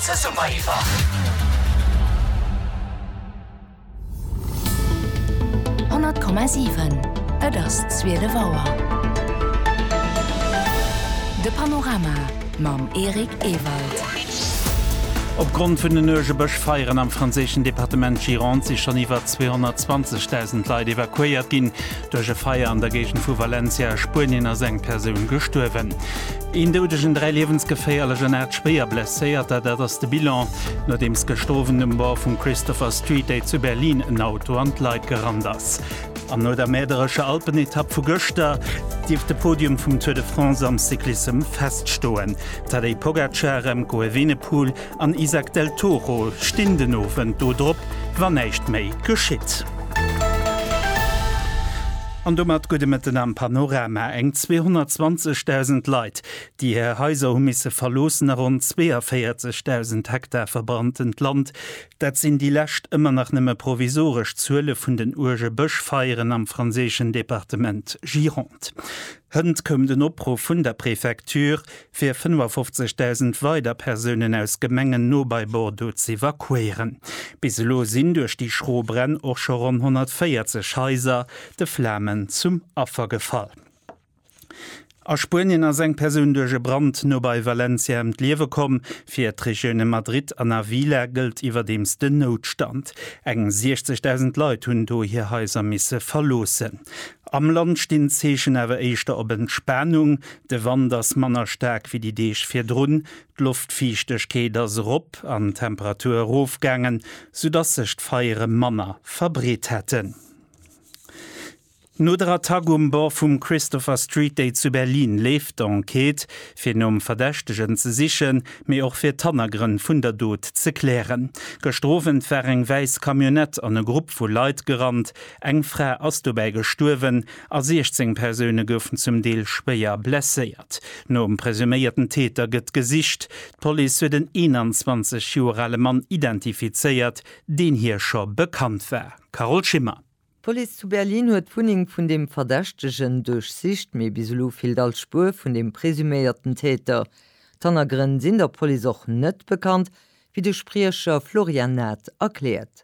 Zesumme iwwer. 100,7 Et ass 12 Auer. De Panorama mam Eric Ewald. Opgrond vun den uerge Bëschfeieren am franséischen Departement Gironde si schonn iwwer 220.000 Leit evakuéiert ginn. Duerch e Feier an der Géigend vu Valencia a Spuenien ass eng Persoun gestuerwen. Een Doudegen, dräi liewensgeféierlech an aacht schwéier Blesséierter, dat ass de Bilan, nodeems gëschter Owend um Bord vum Christopher Street Day zu Berlin en Auto an d'Leit gerannt ass. An no der mäerderescher Alpenetapp vu gëschter, dierft de Podium vum Tour de France am Cyclissem feststoen. Tadej Pogacar, Remco Evenepoel an Isaac del Toro stinn den Owend do drop, wann näischt méi geschitt. An domat gudde Mëtten am Panorama. Eng 220.000 Leit, déi hir Haiser hu misse verloossen a ronn 42.000 Hektar verbrannt-ent Land, dat sinn déi lescht, ëmmer nach nëmme provisoresch, Zuele vun den uerge Bëschfeieren am franséischen Departement Gironde. Hënt koum den Opruff vun der Prefecture, fir 55.000 weider Persounen aus Gemengen no bei Bordeaux z'evakuéieren. Bis elo sinn duerch déi schro Bränn och scho ronn 140 Haiser de Flamen zum Affer gefall. A Spuenien ass eng Persoun duerch e Brand no bei Valencia ëm d'Liewe komm. Fir d'Regioune Madrid an Avila gëllt iwwerdeems den Noutstand. Eng 60.000 Leit hunn do hir Haiser misse verloossen. Am Land stinn d'Zeechen awer éischter op Entspanung. De Wand ass manner staark wéi déi Deeg virdrun, d'Loftfiichtegkeet ass erop an d'Temperatur erofgaangen, soudatt sech d'Feiere manner verbreet hätten. No der Attack um Bord vum Christopher Street Day zu Berlin leeft d'Enquête, fir nom Verdächtegen ze sichen, mee och fir d'Hannergrënn vun der Dot ze klären. Gëschter Owend war eng wäiss Camionnette an e Grupp vu Leit gerannt. Eng Fra ass dobäi gestuerwen, a 16 Persoune goufen zum Deel schwéier blesséiert. Nom presuméierten Täter gëtt gesicht. D'Police huet en 21 Joer ale Mann identifizéiert, deen hir scho bekannt war. Carole Schimmer. D'Police zu Berlin huet d'Wunneng vun dem Verdächtegen duerchsicht, mee bis elo feelt all Spuer vun dem presuméierten Täter. D'Hannergrënn sinn der Police och net bekannt, wéi de Spriecher Florian Naath erkläert.